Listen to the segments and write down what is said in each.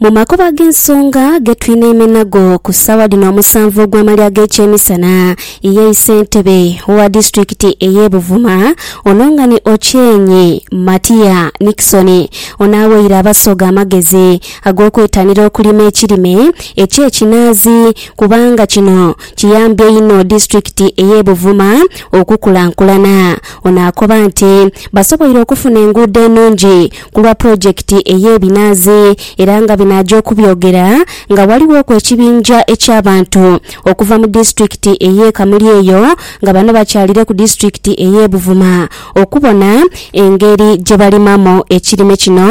Mu makubo ag'ensonga ge twinaime nago ku ssaawa dhino omusanvu ogw'amalya g'ekyemisana ye ssentebe owa disitulikiti ey'e Buvuma Olongani Ochieng Matia Nixon ono aweire Abasoga amagezi ag'okwetanira okulima ekirime eky'ekinaazi kubanga kino kiyambye inho disitulikiti ey'e Buvuma okukulankulana. Ono akoba nti basoboire okufuna enguudo enungi ku lwa pulojekiti ey'ebinaazi era nga bino aja okubyogera nga ghalighoku ekibinja eky'abantu okuva mu disitulikiti ey'e Kamuli eyo nga bano bakyalire ku disitulikiti ey'e Buvuma okubona engeri gye balimamu ekirime kino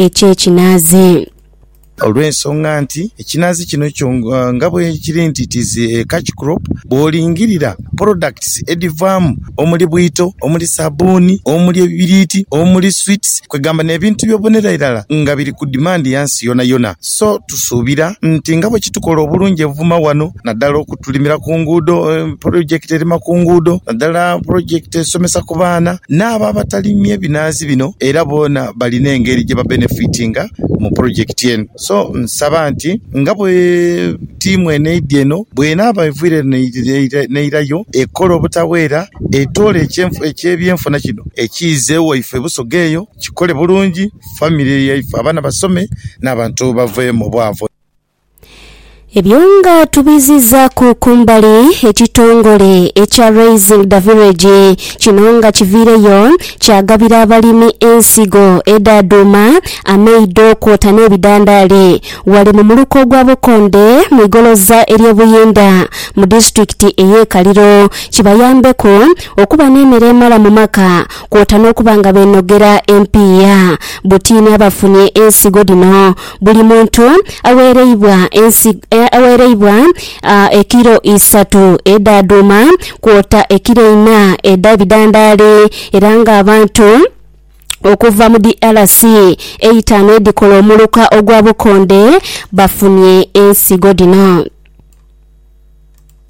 eky'ekinaazi. Olw'ensonga nti ekinaazi kino kyo nga bwekiri nti it is a catch crop, bwolingirira products edhivaamu omuli bwito, omuli sabuuni, omuli ebibiriiti, omuli sweets kwegamba n'ebintu ebyobonera irala nga biri ku demand ya nsi yonayona. So tusuubira nti nga bwekitukola obulungi e Buvuma wano naddala okutulimira ku nguudo, project erima ku nguudo naddala project esomesa ku baana n'abo abatalimye binaazi bino era boona balina engeri gyebabenefitinga. mu pulojekiti eno. So nsaba nti nga bwe tiimu eno eidhye eno, bw'enaaba evwiire eno n'eilayo, ekola obutaweera, etoole eky'ebyenfuna kino ekiize waife Busoga eyo, kikole bulungi, famire yaife abaana basome n'abantu bave mu bwavu. Ebyo nga tubizizaku kumbali, ekitongole ekya Raising the Village kino nga kiviireyo kyagabira abalimi ensigo edha dhuuma, amaido kwota n'ebidhandaali ghale mu muluka ogwa Bukonde mu igoloza ery'e Buyinda mu disitulikiti ey'e Kaliro kibayambeku okuba n'emere emala mu maka kwota n'okuba nga beenogera empiiya butiini abafunye ensigo dhino Buli muntu agheereibwa ensi, agheereibwa ekilo isatu edha dhuuma, kwota ekilo ina edha bidandaali, era ng'abantu okuva mu DRC eitaanu edhikola omuluka ogwa bukonde bafunye ensigo dhino.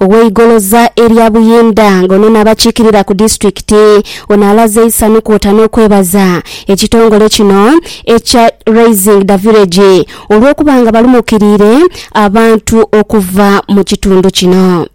Ow'eigoloza erya Buyinda nga ono n'abakiikirira ku disitulikiti ono alaze eisanhu kwota n'okwebaza ekitongole kino ekya Raising the Village olw'okuba nga balumukiriire abantu okuva mu kitundu kino.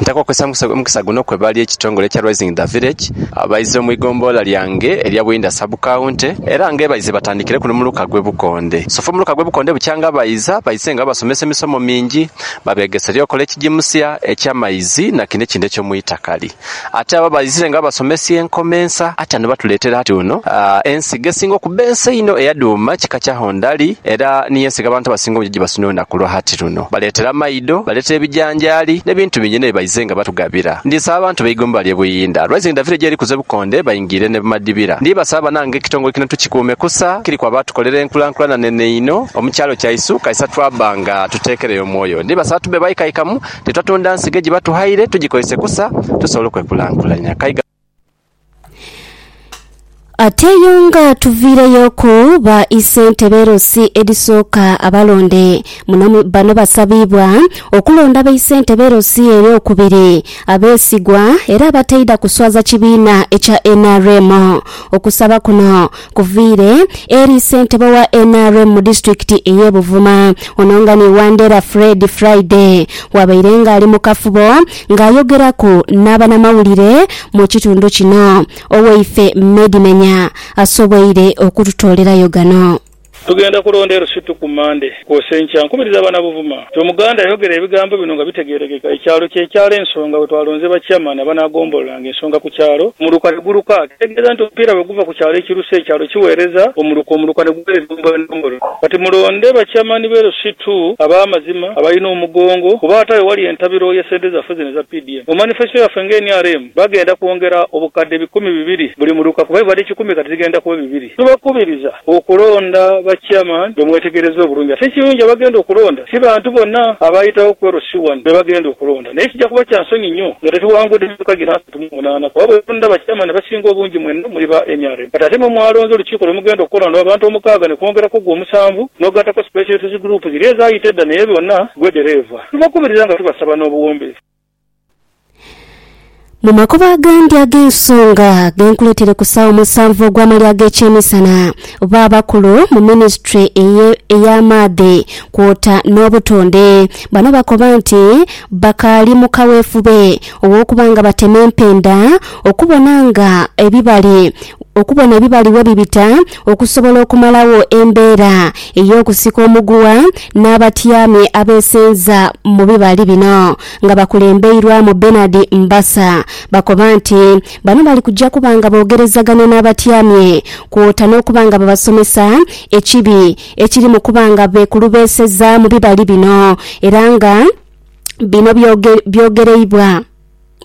Ntaka okwesangusa omukisa guno kwebali ekitongole ekya Raising the Village abaize mu igombolola lyange erya Buyinda Sub County era nga ebaize batandikire kuno mu luka gw'e Bukondo. bukonde. Sofa omuluka gw'ebukonde bukya nga baiza, baise nga babasomesa emisomo mingi, babeegese eby'okola ekigimusia, eky'amaizi na kino ekindi eky'omu itakali. Ate abo abaizire nga babasomesia enkoma ensa ate ano batuleetera ati uno. Ensigo esinga okuba ensa einho eya dhuuma kika kya hondali era niyo ensigo abantu abasinga obungi gyebasunira olunaku lwa hati luno. Baleetera maido, baleetera ebijanjaali n'ebintu bingi inho bye baize nga batugabira. Ndi nsaba abantu beigomba ly'e Buyinda, Rising Davido gyeri kuza ebukonde baingi. ngire ne Bumadibira. Ndibasaba banange ekitongole kino tukikuume kusa kiriku abaatukolera enkulankulana nene einho omu kyalo kyaisu kaisa twabba nga tuteekereyo omwoyo. Ndibasaba tube baikaikamu te twatonda nsigo egiba tughaire tugikoise kusa tusobole okwekulankulanya. Kaiga. Ate yo nga tuviireyoku ba isentebe LC edhisooka abalonde muno bano basabiibwa okulonda baisentebe LC eyokubiri. abeesigwa era abataidha kuswaza kibiina ekya nrm. Okusaba kuno kuviire eri ssentebe wa nrm mu disitulikiti ey'e Buvuma, ono nga ni Wandera Fred Friday bwabaire nga ali mu kafubo nga ayogeraku n'abanamawulire mu kitundu kino, owaife Medimenya asoboire okututoolerayo gano. Tugenda kulonda e Rusutu ku Mmande kwosa enkya. Nkubiriza abaana Buvuma nti Omuganda ayogere ebigambo bino nga bitegeerekeka, Ekyalo kye kyalo ensonga we twalonze ba Chairman abanaagombolola-nga ensonga ku kyalo, omuluka ne guluka. Kitegeeza nti omupiira bwe guva ku kyalo ekirusa, ekyalo kiweereza omuluka, omuluka ne guweereza endombolola. Kati mulonde ba Chairman b'e Rusutu ab'amazima, abalina omugongo kuba ate ayo wali entabiro ya sente zaffe zino eza PDM. Mu manifesto yaffe nga nrm, bagenda kwongera obukadde bikumi bibiri buli muluka kuba ebibadde kikumi kati zigenda kuba bibiri. Tubakubiriza okulonda ba Chairman be mwetegereza obulungi. Ate ekirungi abagenda okulonda si bantu bona abaayitawo ku LC wano be bagenda okulonda. Naye kija kuba kya nsonyi nnyo nga tetuwangudde myuka gino asatu mu munaana kuba bwe tulonda ba Chairman abasinga obungi mwenna muli ba nrm. Kati ate mwe mwalonze olukiiko lwe mugenda okukola lwa bantu omukaaga ne kwongerako gwe omusanvu n'ogattako Special Interest Group ziri ezaayita edda naye bona gwe ddereeva. Tubakubiriza nga tubasaba n'obuwombeefu. Mu makubo agandi ag'ensonga genkuleeteire ku ssaawa omusanvu ogw'amalya ag'ekyemisana, baabakulu mu minisitule eye- ey'amaadhi kwota n'obutonde bano bakoba nti bakaali mu kaweefube ow'okuba nga batema empenda okubona nga ebibali okubona ebibali webibita Okusobola okumalawo embeera ey'okusika omuguwa n'abatyami abeesenza mu bibali bino nga bakulembeirwamu Bernard Mbasa bakoba nti bano bali kuja kuba nga boogerezaganya n'abatyami kwota n'okuba nga babasomesa ekibi ekiri mu kuba nga beekulubeeseza mu bibali bino era nga bino byogereibwa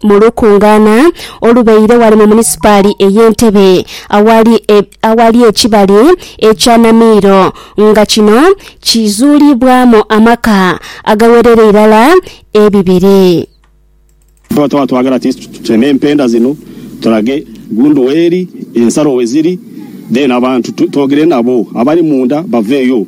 mu lukungaana olubaire ghale mu munisipaali ey'e Ntebe aghali aghali ekibali ekya Namiiro nga kino kizuulibwamu amaka agagherera irala ebibiri. Tuba tuba twagala ti tuteme mpenda zino tulage gundu weri, ensalo weziri then abantu twogere nabo abali munda baveyo.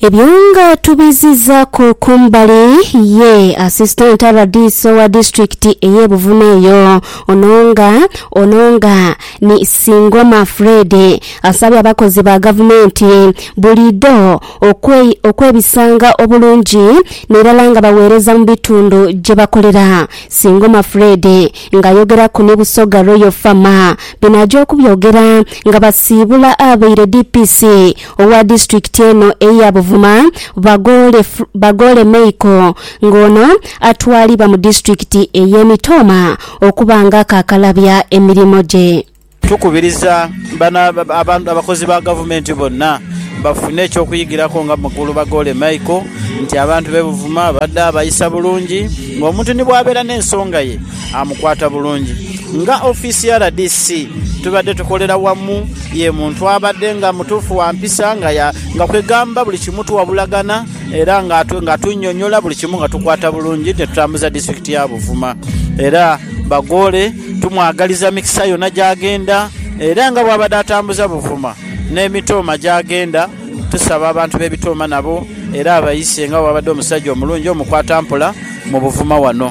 Ebyo nga tubizizaku kumbali ye Assistant rdc owa district eye Buvuma eyo ono nga ono nga ni Singoma Fred asabye abakozi ba gavumenti buliidho okwe okwebisanga obulungi nirala nga bawereza mu bitundu gyebakolera Singoma Fred nga ayogeraku ni Busoga Royal Fama bino aja okubyogera nga basiibula abeire DPC Owa disitulikiti eno eya Buvuma, Bagoole Bagoole Meiko nga ono atwalibwa mu disitulikiti eye Mitooma okuba nga akakalabya emirimo gye. Tukubiriza abakozi ba gavumenti bonna bafune eky'okuyigirako nga Mukulu Bagoole Meiko nti abantu b'e Buvuma abadde abayisa bulungi ng'omuntu ni bw'abeera n'ensonga ye. amukwata bulungi. Nga ofiisi ya rdc tubadde tukolera wamu, ye muntu abadde nga mutuufu wa mpisa nga kwegamba buli kimu tuwabulagana era ng'atunnyonnyola buli kimu nga tukwata bulungi ne tutambuza disitulikiti ya Buvuma era Bagoole tumwagaliza mikisa yonna gy'agenda era nga bw'abadde atambuza Buvuma n'e Mitooma gy'agenda tusaba abantu b'e Bitooma nabo era abayise nga bw'abadde omusajja omulungi omukwatampola mu Buvuma wano.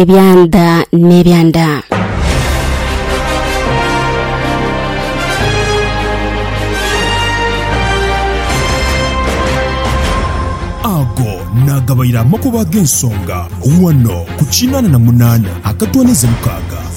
Ebyanda n'ebyanda. Ago naagabaire amakubo ag'ensonga ghano ku kinaana na munaana akatwaniza mukaaga.